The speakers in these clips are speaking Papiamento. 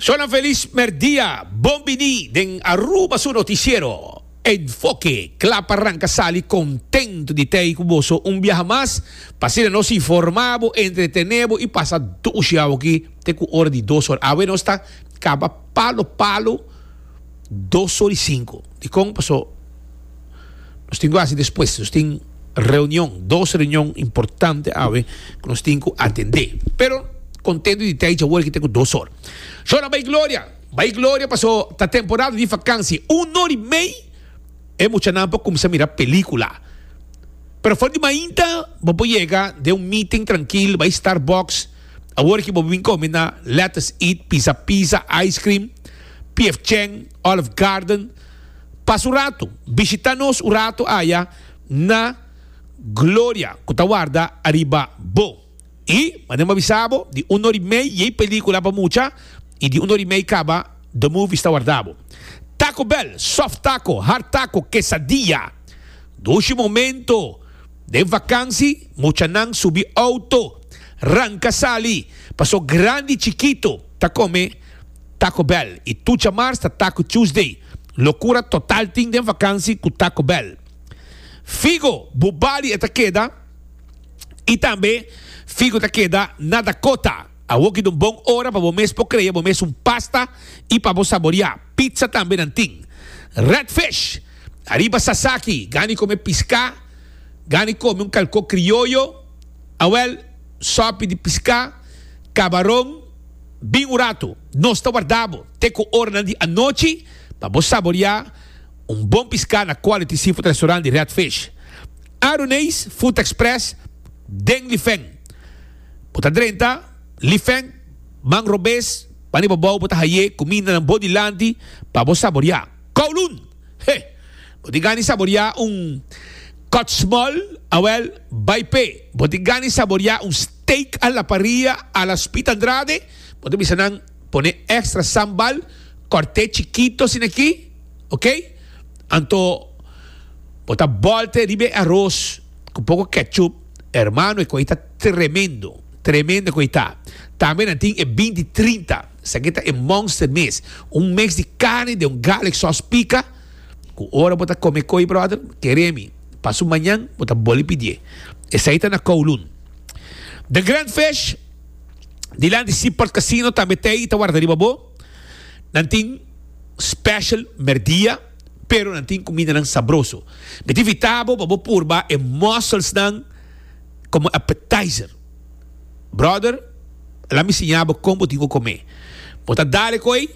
Shona Feliz merdia, bon bini den Aruba su noticiero. Ed Foke kla pa ranka sali contento di t'ei cu boso un biaha mas, pa asina nos informa bo, entretene bo y pasa dos jou aki te cu ora di dos ora. Awe nos ta caba palo palo dos ora y cinco. Dicon? Paso. nos tin ku hasi despues. Nos tin reunion, dos reunion importante awe ku nos tin ku atendé. Pero kontentu di tei djawoor ki ta ku dos or. Shor a bai gloria, bai gloria paso ta temporada di vakansi. Un or i mei e muchanan por kumsa mira pelikula. Pero for di mainta bo por yega den un meeting trankil, bai Starbucks, awor ki bo bin kome na Let Us Eat, Pisa Pisa, Ice Cream, PF Chang, Olive Garden. Pas un ratu, bishita nos un ratu aya na Gloria ku ta warda ariba bo. I manera mi a bisa bo, di un or'i mei yei pelikula pa mucha i di un or'i mei kaba The Movies ta warda bo. Taco Bell, sof taco, hard taco, quesadilla. Dushi momento den vakansi muchanan subi outo, ranka sali, paso grandi i chikito ta kome. Taco Bell y tucha mars ta Taco Tuesday. Locura total tin den vakansi cu Taco Bell. Figo bu bali e ta keda y tambe figo ta keda na Dakota. Awoki ta un bon ora pa bo mes por crea bo mes un pasta y pa bo saboria. Pizza tambe nan tin. Red Fish, Ariba sasaki, gani come pisca, gani come un calco criollo, awel, sopi di pisca, cabaron. Bin un ratu, nos ta warda bo te ku oranan di anochi pa bo saboriá un bon piská na Quality Seafood Restaurant di Red Fish, Aruneis Food Express den Lifeng. Bo ta drenta Lifeng, man robes pa riba bou bo ta haié kumindanan bo dilanti pa bo saboriá. Kowloon! He! Bo tin gana di saboriá un kòtsmòl? Awèl, bai p'e! Bo tin gana di saboriá un. Take a la parrilla a la spit Andrade, bo ta bisa nan pone extra sambal, corte chikito asina aki, ok, anto bo ta bolte riba e aros cu poco ketchup, hermano e cosita tremendo, tremendo e cosita, tambe nan tin e binti trinta, esaki ta e monster mes, un mix di carne den un garlic sauce pica, cu ora bo ta come e coy brother, keremi, paso mañan bo ta boli pidié, esaki ta na kowloon. The Grand Fish dilanti Seaport Casino tambe ta ei ta warda riba bo. Nan tin special merdia pero nan tin cumidanan sabroso. Mi ta invita bo pa bo purba e musselsnan como appetizer. Brother, laat mi siña bo con bo tin cu come. Bo ta dale cu ei,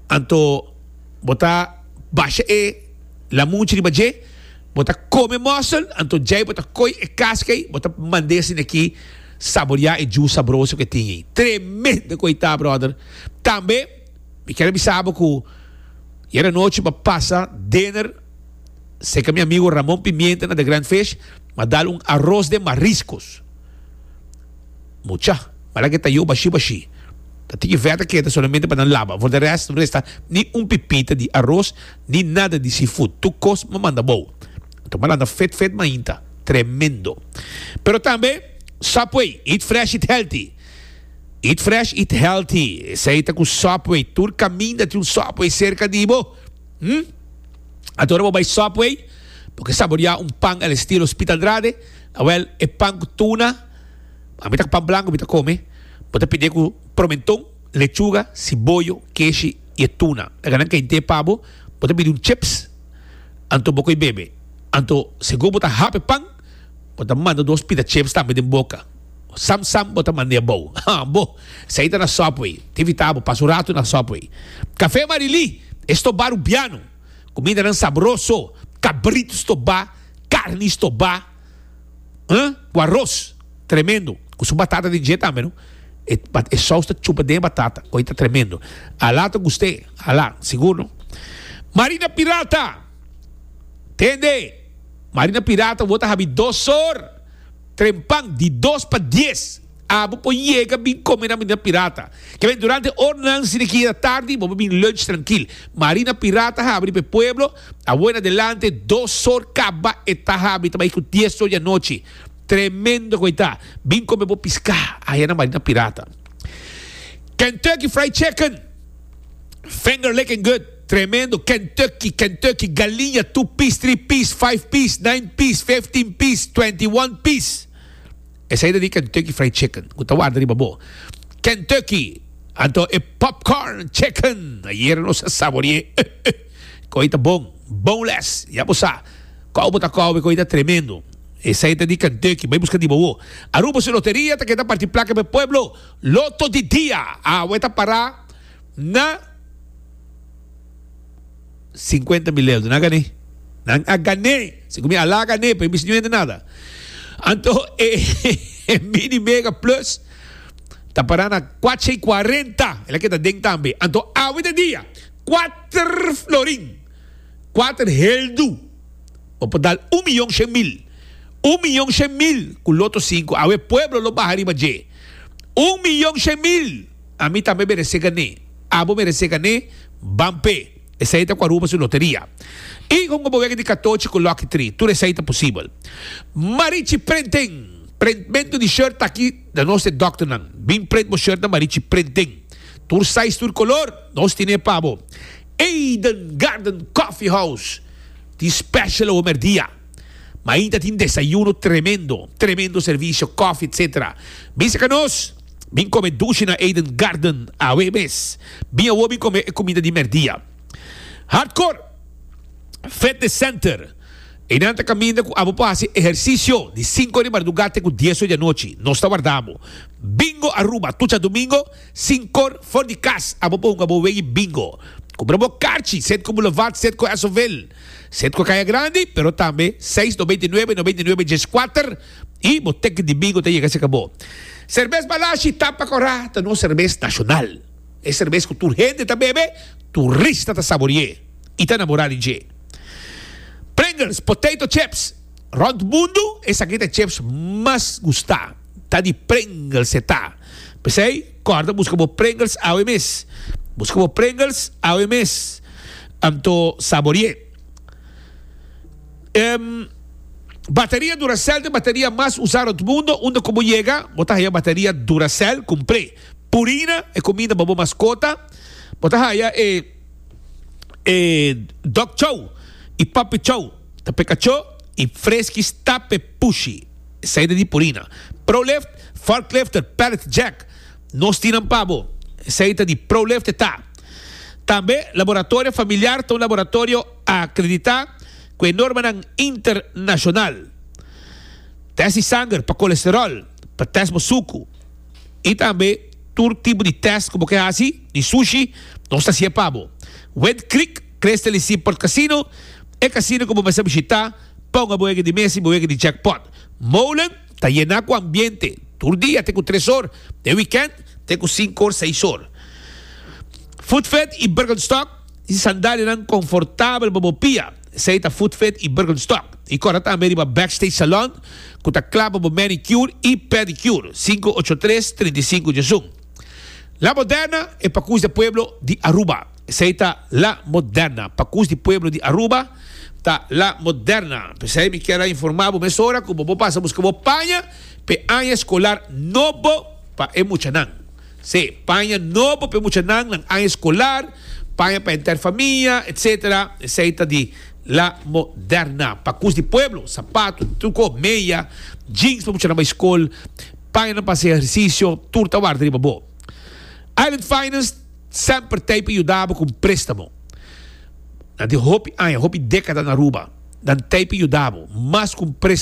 anto bo ta basha e lamunchi riba dje. Bo ta kome mòsel, anto djei bo ta koi e kaska ei, bo ta mand'é asina aki saboriá e djus sabroso ku e tin ei. Tremendo ku ei ta, bròder! Tambe mi kier a bisa bo ku yera anochi bo a pasa dinner serka mi amigo Ramon Pimienta na The Grand Fish, mi a dal un aros den mariskos. Mucha. Mara ke ta yo bashi bashi. Ta tiki vèta keda solamente pa nan laba. For de rest no resta ni un pipita di aros ni nada di seafood. Tur kos mi manda abou. Tur mara anda fit fit mainta. Tremendo. Pero tambe Subway, eat fresh eat healthy. Eat fresh eat healthy. Esei ta ku Subway. Tur kaminda tin un Subway serka di bo. Hm. Anto ora bo bai Subway bo ke saboriá un pan el estilo Spit Andrade. Awel, e pan ku tuna, ami ta ku pan blanku mi ta kome, bo ta pide ku promenton, lechuga, siboyo, keshi i e tuna. Ta ka nan kente pa bo, bo ta pidi un chips, anto bo koi bebe. Anto, si go bo ta hap e pan, bo ta manda dos pita chips tambe den boka. Sam sam bo ta manda e abou. Ha, bo, esei ta na Subway. Te evitá bo pasa un ratu na Subway. Kafé Marilí, e stop baru biano. Kumidanan sabroso, kabrit stobá, karni stobá, ha, ku aros, tremendo, ku su batata den dje tambe no, e, e sous ta chupa den e batata, oye ta tremendo. Alá ta gust'é, alá, sigur no. Marina Pirata, Tende, Marina Pirata, bo ta habi dos sor trempan, di dos pa dies. Abo por yega bin come na Marina Pirata. Kebe durante ornan si de kia ta tardi bo por bin lunch trankil. Marina Pirata habri pa e pueblo awe na delante dos sor kaba e ta habri ta bai ku dies sor di anochi. Tremendo ku e ta. Bin come bo pisca aya na Marina Pirata. Kentucky Fried Chicken, Finger licking good, tremendo. Kentucky, Kentucky, galiña two piece, three piece, five piece, nine piece, fifteen piece, twenty one piece. Esei ta di Kentucky Fried Chicken cu ta warda riba bo. Kentucky! Anto e popcorn chicken ayer nos a saborie uh uh con e ta bon, boneless, ya bo sa cau bo ta cowe con e ta tremendo. Esei ta di Kentucky, bay busca riba wo. Aruba su loteria ta keda parti placa pa e pueblo, Lotto di Dia, awe ta para na. Sinkuenta mil euro, nan a gané. Nan a gané! Sicu mi a la gané, pa e bisa no hende nada. Anto e Mini Mega Plus ta para na cuacha y cuarenta. El a keda den tambe. Anto awe ta dia. Cuater florin. Cuater heldu. Bo por dal un miyon shen mil. Un miyon shen mil cu Loto Sinku. Awe pueblo lo baha riba dje. Un miyon shen mil! Ami tambe merece gané. Abo merece gané, ban p'e. Esei ta cu a ruba su loteria. Y con bobegue di catochi cu lucky three, tur esei ta posibel. Marichi Printing! Printmento di shirt ta aki na nos e dokternan. Bin print bo shirt na Marichi Printing. Tur size, tur color, nos tin'e pa bo. Eden Garden Coffee House tin special awo merdia. Ma ainta tin desayuno tremendo. Tremendo servicio, coffee etc. Bisa ca nos. Bin come dushi na Eden Garden awe mes. Bin awor bin come e comida di merdia. Hardcore Fitness Center. Einan ta caminda cu abo por haci ehercicio di cinco di marduga te cu dieso di anochi. Nos ta warda abo. Bingo Aruba. Tucha domingo, sin cor, for di cas, abo por hunga bo wei bingo. Cumpra bo carchi, set cu Boulevard, set cu Asoville, set cu Caya Grande, pero tambe seis noventa y nuebe, noventa y nuebe diescuater. y bo tek di bingo ta yega si cabo. Cervez Balashi tapa cora ta nos cervez nacional. E cervez cu tur hende ta bebe, turista ta sabori'e y ta namora di dje. Pringles potato chips, Rond mundo esaki ta chips mas gusta ta di Pringles e ta. P'esey corda busca bo Pringles awe mes. Busca bo Pringles awe mes anto sabori'e. Bateria Duracell ta e bateria mas usá rond mundo, unda ku bo yega bo ta haya bateria Duracell kumpré. Purina e kuminda pa bo maskota, bo ta haya e e Dog Chow i Puppy Chow, ta peka cho i freski stape pushi, esei ta di Purina. Prolift, Forklifter, Pallet Jack, nos tinan pa bo, esei ta di Prolift e ta. Tambe Laboratorio Familiar ta un laboratorio. a acredita cu e normanan internacional test di sanger pa colesterol, pa test bo sucu y tambe tur tipo di test cu bo ke haci di sushi nos ta haci'e pa bo. Wet Creek Crystal y Seaport Casino, e casino cu bo mester bishita, ponga bo ege di mes y bo ege di jackpot. Molen ta yena cu ambiente tur dia te cu tres or, den weekend te cu cinco or seis or. Food Fed y Birkenstock Di sandalianan confortabel pa bo pia, esey ta Foot Fit y Birkenstock. Y corta tambe riba Backstage Salon, cu ta cla pa bo manicure y pedicure, cinco ocho tres, trinta y cinco djesun. La Moderna e pacus de pueblo di Aruba. Esey ta La Moderna, pacus di pueblo di Aruba, ta La Moderna. P'esey mi kier a informa bo mesora cu bo por pasa busca bo paña p'e aña escolar nobo pa e muchanan. Sí, paña nobo pa e muchanan, nan aña escolar, paña pa henter famia, etc. Esey ta di La Moderna. Pacus di pueblo, sapato, truco, meya, jeans pa muchanan bay scol, paña nan pa haci ehercicio, tur ta warda riba bo. Island Finance semper tey pa yudabo cu un prestamo. Na tin hopi aña, hopi decada na Aruba, nan tey pa yudabo mas cu un prestamo.